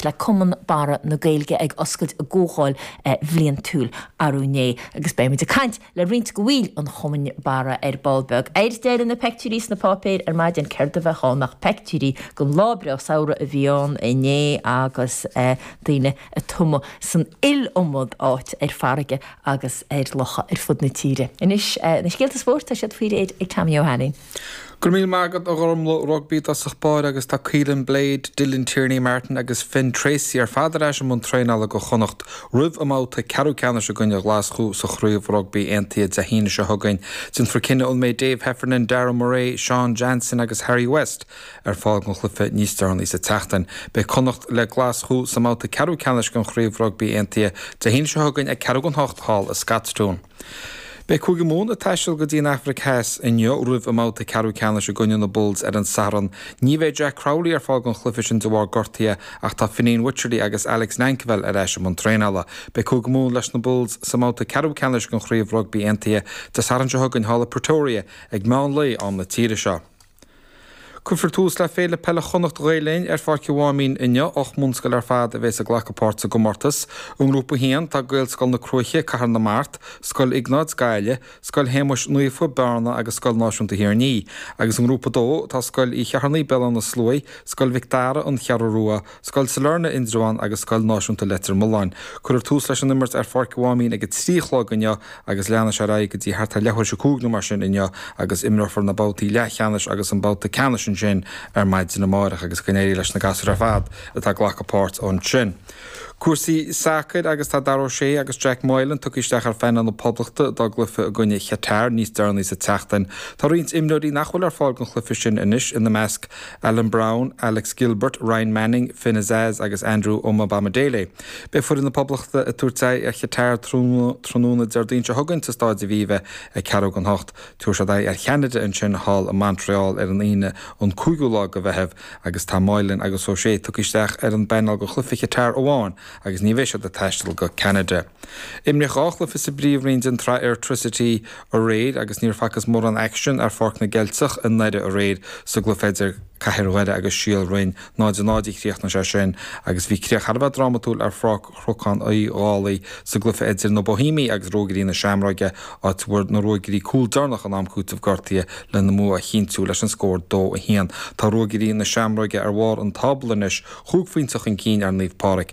le Cumann Barra na Gaeilge ag oscailt a gcomhdháil bhliantúil arú inné agus beidh muid ag caint le roinnt de bhaill an Chumainn Barra ar ball beag. Ar deireadh, na peictiúirí sna páipéir ar maidin, céard a bheadh ann ach peictiúirí den lá breá samhraidh a bhí ann inné agus daoine ag tumadh san iliomad áit, ar farraige agus ar locha ar fud na tíre. Anois na scéalta spóirt, tá siad faoi réir ag Tommy Ó hAilín. Go raibh míle maith agat, a Ghormfhlaith. Rugbaí i dtosach báire agus tá Caolin Blade, Dylan Tierney-Martin agus Finn Treacy ar fad ar ais i mbun traenála do Chonnacht roimh a mbabhta ceathrú ceannais i gcoinne Ghlaschú sa Chraobh Rugbaí Aontaithe Dé hAoine seo chugainn. Déanfar cinneadh an mbeidh Dave Heffernan, Darragh Murray, Sean Jansen agus Harry West ar fáil don chluiche níos deireanaí sa tseachtain. Beidh Connacht le Glaschú sa mbabhta ceathrú ceannais den Chraobh Rugbaí Aontaithe Dé hAoine seo chugainn ag ceathrú don hocht thall i Scotstoun. Beidh Cúige Mumhan ag taisteal go dtí an Afraic Theas inniu roimh a mbabhta ceathrú ceannais i gcoinne na Bulls ar an Satharn. Ní bheidh Jack Crowley ar fáil don chluiche sin de bharr gortaithe ach tá Fineen Wycherley agus Alex Nankivell ar ais i mbun traenála. Beidh Cúige Mumhan leis na Bulls sa mbabhta ceathrú ceannais den Chraobh Rugbaí Aontaithe Dé Sathairn seo chugainn thall i Pretoria ag meán lae am na tíre seo. Cuirfear tús le Féile Peile Chonnacht Ghael Linn ar Pháirc an Mháimín inniu. Ocht mbunscoil ar fad a bheas ag glacadh páirt sa gcomórtas. I nGrúpa 1, tá Gaelscoil na Cruaiche, Cathair na Mart, Scoil Iognáid, Gaillimh, Scoil Shéamais Naofa, Bearna agus Scoil Náisiúnta Thír an Fhia, agus i nGrúpa 2, tá Scoil Uí Cheithearnaigh, Béal Átha na Sluaighe, Scoil Mhic Dara, An Cheathrú Rua, Scoil Sailearna, Indreabhán agus Scoil Náisiúnta Leitir Mealláin. Cuirfear tús leis an imirt ar Pháirc an Mháimín ag a trí a chlog inniu agus leanfaidh sé ar aghaidh go dtí thart ar leathuair tar éis a cúig nó mar sin inniu agus imreofar na babhtaí leathcheannais agus an babhta ceannais ansin ar maidin amárach agus go n-éirí leis na gasúir ar fad atá ag glacadh páirt ansin. Cúrsaí sacair agus tá Dara O'Shea agus Jack Moylan tugtha isteach ar phainéal na Poblachta dá gcluiche i gcoinne Chatar níos deireanaí sa tseachtain. Tá roinnt imreoirí nach bhfuil ar fáil don chluiche sin anois, ina measc, Alan Browne, Alex Gilbert, Ryan Manning, Finn Azaz agus Andrew Omobamidele. Beidh foireann na Poblachta ag tabhairt aghaidh ar Chatar tráthnóna Déardaoin seo chugainn sa Staid Aviva ag ceathrú don hocht. Tabharfaidh siad aghaidh ar Cheanada ansin thall i Montreal ar an Aoine an cúigiú lá de Mheitheamh agus tá Moylan agus O'Shea tugtha isteach ar an bpainéal do chluiche Chatar amháin agus ní bheidh siad ag taisteal go Ceanada. Imríodh dhá chluiche sa bPríomhroinn den tsraith Airtricity aréir agus níor facthas mórán aicsin ar Pháirc na gCeilteach i nDoire aréir sa gcluiche idir Cathair Dhoire agus Síol Bhroin. 0-0 a chríochnaigh sé sin agus bhí críoch thar a bheith drámatúil ar Pháirc Chnocán Uí Dhálaigh sa gcluiche idir na Bohímigh agus Ruagairí na Seamróige, áit a bhfuair na Ruagairí cúl deireanach in am cúitimh gortaithe lena mbua a chinntiú leis an scór 2, 1. Tá Ruagairí na Seamróige ar bharr an tábla anois, chúig phointe chun cinn ar Naomh Pádraig.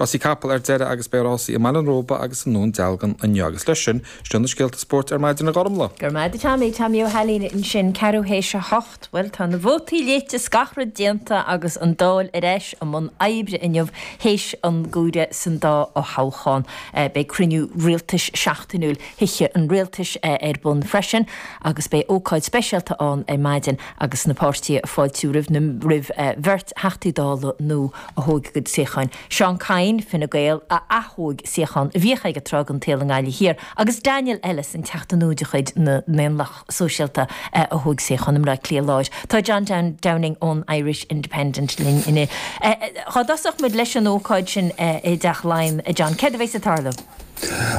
Rásaí capaill ar deireadh agus beidh rásaí i mBaile an Róba agus i nDún Dealgan inniu agus leis sin, sin iad na scéalta spóirt ar maidin, a Ghormfhlaith. Go raibh maith agat, a Tommy, Tommy Ó hAilín ansin, ceathrú théis a hocht. Bhuel, tá na vótaí caite is scagadh déanta agus an Dáil ar ais i mbun oibre inniu théis an chomhairimh san dá fhothoghchán. Beidh cruinniú rialtais seachtainiúil Thithe an Rialtais ar bun freisin agus beidh ócáid speisialta ann ar maidin agus na páirtithe ag fáiltiú roimh na, roimh bheirt Theachtaí Dála nua, a thóg a gcuid suíocháin, Seán Kyne, Fine Gael, a ath-thóg suíochán a bhíodh aige tráth den tsaol i nGaillimh Thiar, agus Daniel Ennis, an Teachta nua de chuid na nDaonlathach Sóisialta, a thóg suíochán i mBleá Cliath Láir. Tá John Downing ón Irish Independent linn inniu. Dhá dtosódh muid leis an ócáid sin i dTeach Laighean, a John, céard a bheas ag tarlú?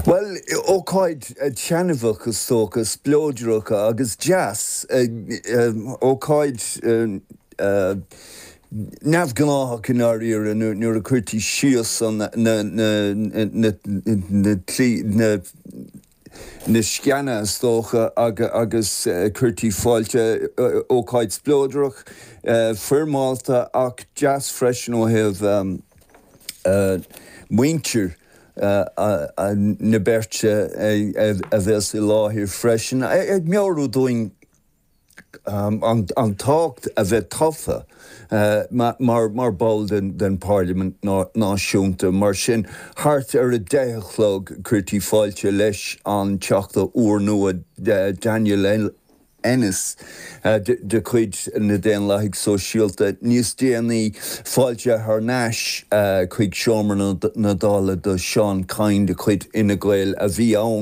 Bhuel, ócáid taitneamhach, is dócha, spleodrach agus deas. Ócáid neamhghnáthach i ndáiríre nuair a cuirtear síos na sceana is dócha agus cuirtear fáilte, ócáid spleodrach, foirmeálta ach deas freisin ó thaobh muintir na beirte a bhéas i láthair freisin ag meabhrú dúinn an tábhacht a bheith tofa mar ball den Pharlaimint Náisiúnta. Mar sin, thart ar a deich a chlog, cuirfear fáilte leis an Teachta úrnua Daniel Ennis de chuid na Daonlathaigh Sóisialta, níos déanaí fáilte thar n-ais chuig seomra na Dála do Seán Kyne de chuid Fhine Gael a bhí ann.